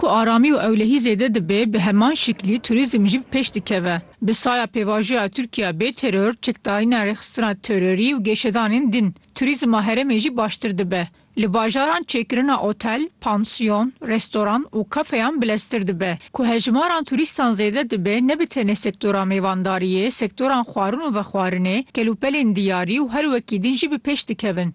Ku aramî û ewlehî zêde dibe bi heman şiklî turîzm jî bi pêş dikeve. Bi saya pêvajoya Tirkiya bê teror, çekdarîna rêxistina terorî û geşedanên din, turîzma herêmê jî baştir dibe. Li bajaran çêkirina otel, pansiyon, restoran û kafeyan bileztir dibe. Ku hejmaran turîstan zêde dibe ne bi tenê sektora mêvandariyê, sektoran xwarin û vexwarinê, kelûpelên diyarî û her wekî din jî bi pêş dikevin.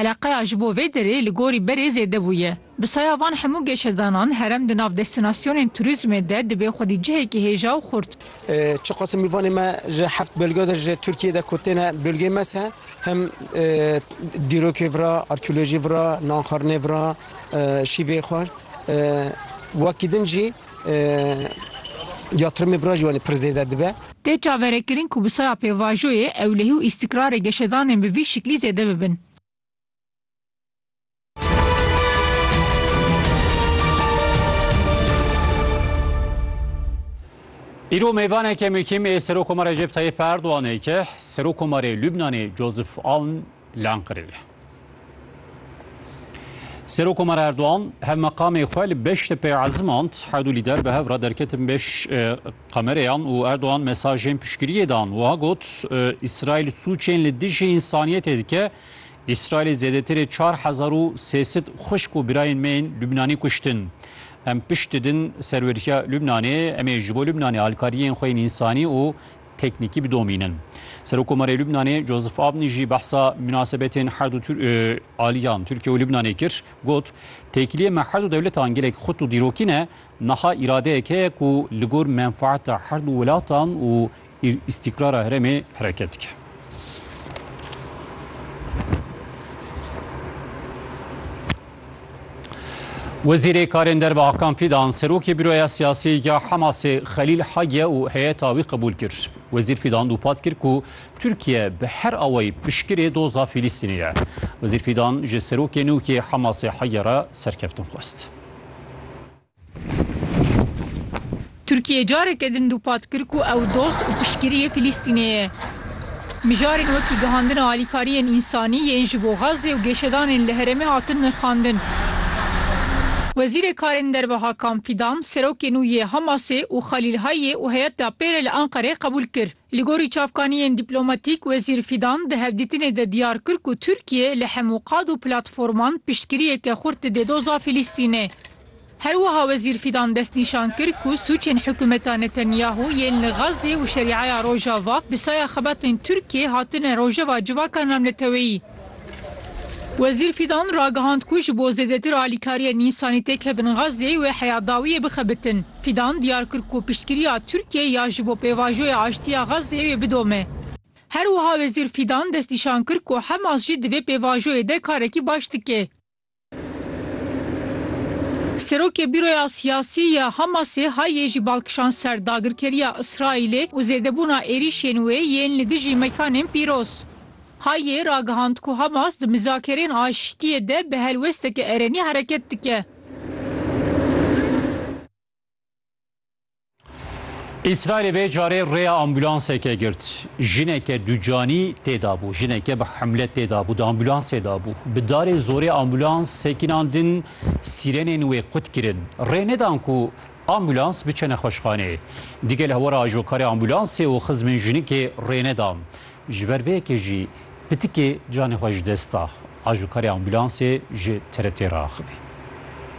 Eleqeya ji bo vê derê li gorî berê zêde bûye. Bi saya van hemû geşedanan herem di nav destinasyonên turîzmê de dibê xwedî cihekî hêja û xurt. Çiqas mîvanê me ji heft bölge de ji Tirkiyeyê de ku têne bölgeyê me se him dîrokê vira, arkeolojî vira, nan xwarinê vira, şîvê xwar wekî din jî yatrimê vira jî wanê pir zêde dibe. Tê çaverekirin ku bi saya pêvajoyê ewlehî û îstîkrarê geşedanên bi vî şiklî zêde bibin. Îro mêvaneke muhîm ê Serokomar Recep Tayyip Erdoganê ki Serokomarê Lubnanê Joseph Aoun lan kiriye. Serokomar Erdoğan hev meqamê xwe li Beştepê ezimand hewdû lîder bi hev re derketin beş qemereyan û Erdoğan mesajên piştgiriyê dan wiha got İsrail sûçên li dijî însaniyetê dike İsrailê zêdetirê 4300 xwişk û birayên me yên Lubnanî kuştin. Em pişt didin serweriya Lubnanê, em ê ji bo Lubnanê alkariyên xwe yên însanî û teknîkî bidomînin. Serokomarê Lubnanê Joseph Avni jî behsa münasebetên her du aliyan Tirkiye û Lubnanê kir, got, Têkiliyê me her du dewletan gelek xurt û dîrokî ne, niha îradeyek heye ku li gor menfaeta her du welatan û îstîkrara herêmê hereket dike. Wezîrê Karên Derve Hakan Fîdan serokê Bîroya Siyasî ya Hemasê Xelîl Hage û heyeta wî qebûl kir. Wezîr Fîdan dûpat kir ku Tirkiye bi her awayî piştgirê doza Fîlîstînê ye. Wezîr Fîdan ji serokê nûkê Hemasê Hage re serkeftin xwest. Tirkiyê careke din dûpat kir ku ew dost û piştgiriyê Filîstînê ye. Mijarên wekî gihandina alîkariyên însanî yên ji bo Gazze û gêşedanên li herêmê hatin nirxandin. Wezîrê Karên Derve Hakan Fidan serokê nû yê Hamasê û Xalîl Hayê û heyeta pêre li Enqereyê qebûl kir. Li gorî çavkaniyên dîplomatîk, Wezîr Fidan di hevdîtinê de diyar kir ku Tirkiyê li hemû qad û platforman piştgiriyeke xurt dide doza Filîstînê. Her wiha Wezîr Fîdan destnîşan kir ku sûcên hikûmeta Netanyahu yên li Gazê û Şerîaya Rojava bi saya xebatên Tirkiyê hatine rojeva civaka navneteweyî. Wezîr Fîdan ragihand ku ji bo zêdetir alîkariyên însanî têk hebin Gazê wê heya dawiyê bixebitin. Fîdan diyar kir ku piştgiriya Tirkiyê ya ji bo pêvajoya aştiya Gazê wê bidome. Her wiha Wezîr Fîdan destnîşan kir ku Hemas jî di vê pêvajoyê de karekî baş dike. Serokê Bîroya Siyasî ya Hamasê hayê jî bal kişand ser dagirkeriya Îsraîlê û zêdebûna êrîşên wê yên li dijî mekanên pîroz. Hayê ragihand ku Hamas di mizakerên aşîtiyê de bi helwesteke erenî hereket dike. Îsraîlê vê carê rêya ambulanseke girt. Jineke ducanî têdabû. Jineke bi hemle têdabû di ambulansê dabû. Bi darê zorê ambulans sekînan din sîrenên wê qut kirin. Rê nedan ku ambulans biçe nexweşxanê. Digel hewara ajokarê ambulansê û xizmên jinikê rê nedan. Ji ber vê yekê jî pitikê canê xwe ji dest da. Ajokarê ambulansê ji TRT re axivî.